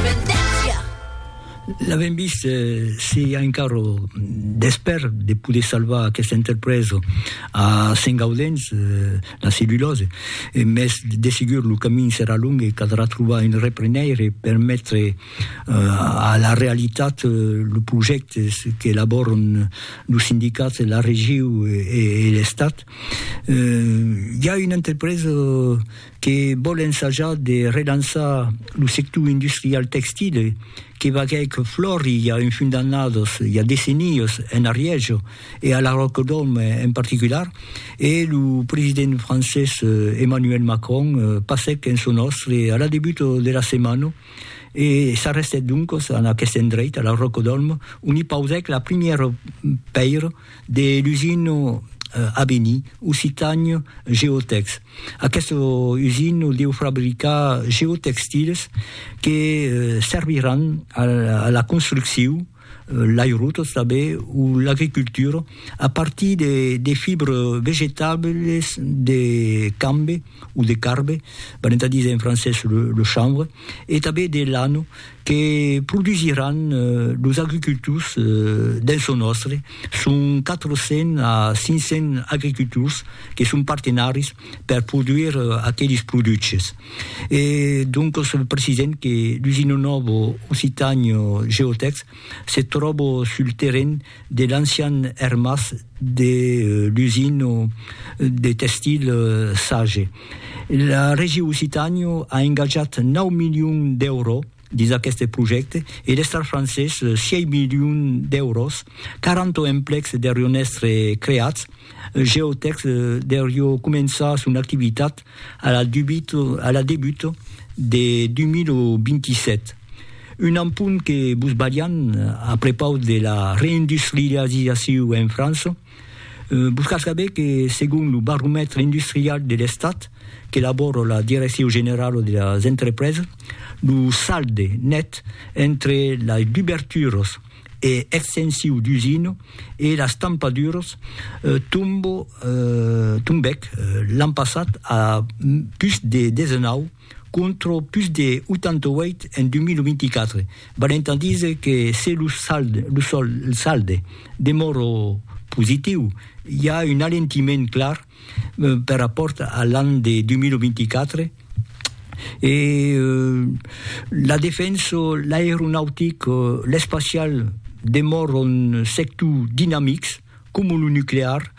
Vendètja! L'avèm vist, se i a encara d'espèr de poder salvar aquesta entrepresa a Sengaudens, la cellulòse, mès de segur lo camin serà long e caldrà trobar un reprenèire per metre a la realitat los projèctes qu'elabòran los sindicats, la regiu e l'Estat. I a una entrepresa que vòl ensajar de relançar lo sector industrial textile que vaguèc flòri i a un fin d'annadas, i a decennias, en Ariège e a la Ròcadòme en particular, e lo president francés Emmanuel Macron passèc en son òstre a la debut de la setmana e s'arrestèt doncas en aqueste endreit, a la Ròcadòme, ont i pausèc la primièra pèira De l'usino Abeni, occitanio, Geotex. Aqueste usino deu fabricar geotextiles que serviràn a la construccion, l'airotos tanben o l'agricultura a partir de fibres vegetables de cambe o de carbe, valent a díser en francés le chanvre, e tanben de lano, que produsiràn los agricultors dens lo nòstre, son 400 a 500 agricultors que son partenaris per produire aqueles produches. E doncas precisem que l'usina nòva Occitània Geotèx se tròba sul terren de l'ancian ermàs de l'usina de tèxtil Sage. La Régie Occitània a engatjat 9 milions d'èuros dins aqueste projècte e l'Estat francés 6 milions d'èuros, 40 emplecs derion èstre creats, Geotech derió començar son activitat a la debut de 2027. Un empunt que vos balhan a prepaus de la reindustrializacion en França, Vos cal saber que, segon lo baromètre industrial de l'Estat qu'elabòra la Direccion Generala de las Entrepresas, lo salde net entre las duberturas e extensiu d'usina e las tampaduras tombèc l'an passat a pus de 19, contra pus de 88 en 2024, valent a díser que se lo salde demòra positiu, i a un alentiment clar per rapòrt a l'an de 2024, e la defensa, l'aeronautic, l'espacial demòran sectors dinamics. Coma lo nuclear,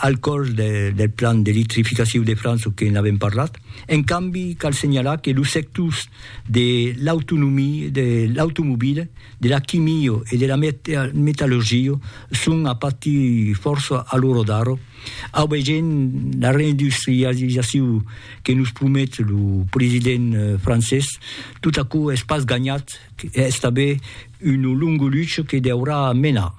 al còrs del plan d'electrificaciu de França, o que n'avèm parlat. En cambi, cal senhalar que los sectors de l'autonomia, de l'automobila, de la quimio e de la metallurgia son a patir fòrça a l'ora d'ara, aubegent la reindustrializaciu que nos promet lo president francés. Tot aquò es pas ganhat, es tanben una longa lucha que deurà menar.